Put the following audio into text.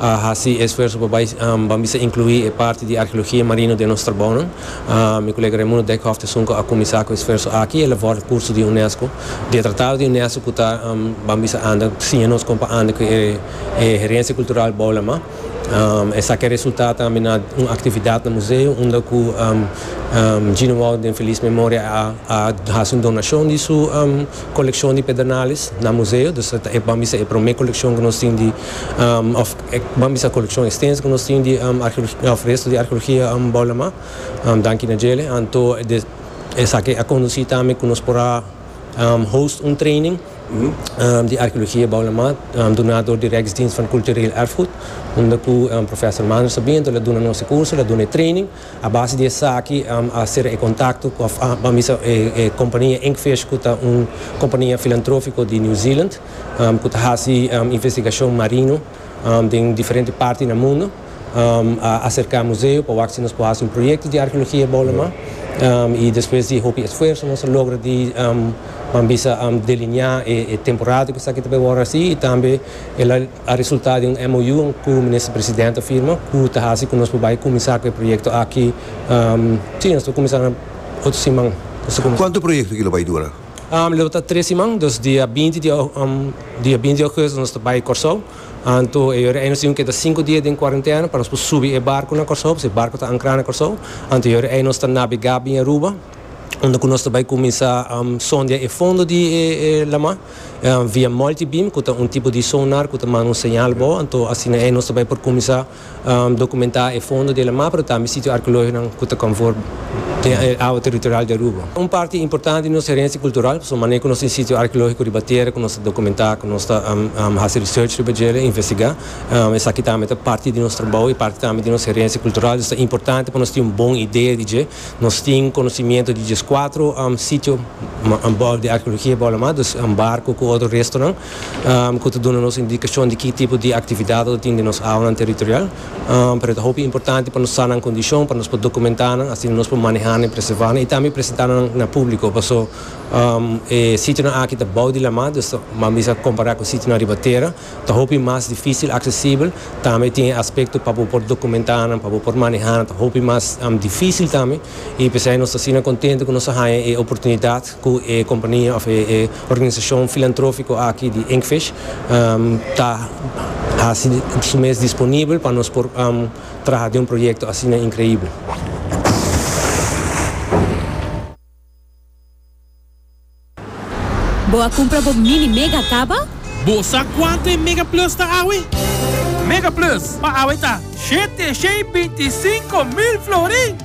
a hasi esfuerso pa bai ban bisa inclui e parti di arheologia marino den nos trabounan. Mi colega Raimundo Dijkhoff ta sunco a cuminsa cu e esfuerso aki, el a vorda curso di UNESCO. Di e tratado di UNESCO cu ta Ban bisa anda, siña nos con pa anda cu e herencia cultural bou lama. Esaki a resulta tambe na un actividad na museo unda cu Gino Wout den feliz memoria a hasi un donacion di su coleccion di pedernales na museo. Dus ta e ban bisa e prome coleccion cu nos tin di. Ban bisa coleccion extenso cu nos tin di resto di archeologia bou lama, danki na djele. Anto esaki a conduci tambe cu nos por a host un training di archeologia bou lama duna door di Rijksdienst van Cultureel Erfgoed, unda cu Professor Mander Sabiento la duna nos e curso, la duna e training. A base di esaki a cera e contacto cu, ban bisa, e compania Inkfish cu ta un compania filantrofico di New Zealand. ku ta hasi investigashon marino den diferente parti na mundu a aserká museo pa wak si nos por hasi un proyekto di arkeologia Bolama i despues di hopi esfuerso nos a logra di pan bisa delineá e temporada ku esaki ta bai wòrdu hasi i tambe el a resultá den un MOU ku Minister Presidente a firma ku ta hasi ku nos por bai kuminsá ku e proyekto aki si nos ta kuminsá na otro siman. Kuantu proyekto aki lo bai dura? Lo ta tres siman, dus dia binti di dia binti di Augustus nos ta bai Kòrsou. Anto e yora ei nos tin ku keda sinku dia den kuarentena pa nos por subi e barku na Kòrsou, pasobra e barku ta ankrá na Kòrsou. Anto e yora ei nos ta nabegá bin Aruba, unda ku nos ta bai kuminsá sondia e fondo di e lamá via multi-beam ku ta un tipo di sonar ku ta manda un señal abou. Anto asina ei nos ta bai por kuminsá. Dokumentá e fondo di Alamá pero tambe sitio arkeológikonan ku ta konfor den e awa teritorial di Aruba. Un parti importante di nos herensia kultural pasobra manera ku nos tin sitio arkeológiko riba tera ku nos ta dokumentá, ku nos ta hasi research riba dje, ta investigá. Esaki tambe ta parti di nos trabou i parti tambe di nos herensia kultural. Dus ta importante pa nos tin un bon idea di dje. Nos tin konosimiento di djeskuatro sitio di arkeologia bou Alamá, dus barko ku otro restonan. ku ta duna nos indikashon di ki tipo di aktividat lo tin den nos awanan teritorial. Pero e ta hopi importante pa nos sa nan kondishon, pa nos por dokumentá nan, asina nos por manehá nan i preservá nan i tambe presentá nan na públiko. Paso e sitionan aki ta bou di lamá, dus ta mas bisa kompará ku sitionan riba tera. Ta hopi mas difísil aksesibel, tambe tin e aspekto pa bo por dokumentá nan, pa bo por manehá nan ta hopi mas difísil tambe. I p'esei nos ta asina kontentu ku nos a haña e oportunidat. cu e compania of e organisacion filantrofico aki di Inkfish ta haci su mes disponibel pa nos por traha den un proyecto asina increibel. Bo a cumpra bo Mini Mega caba? Bo sa cuanto e Mega Plus ta awe? Mega Plus pa awe ta shete shei binti sinco mil florin!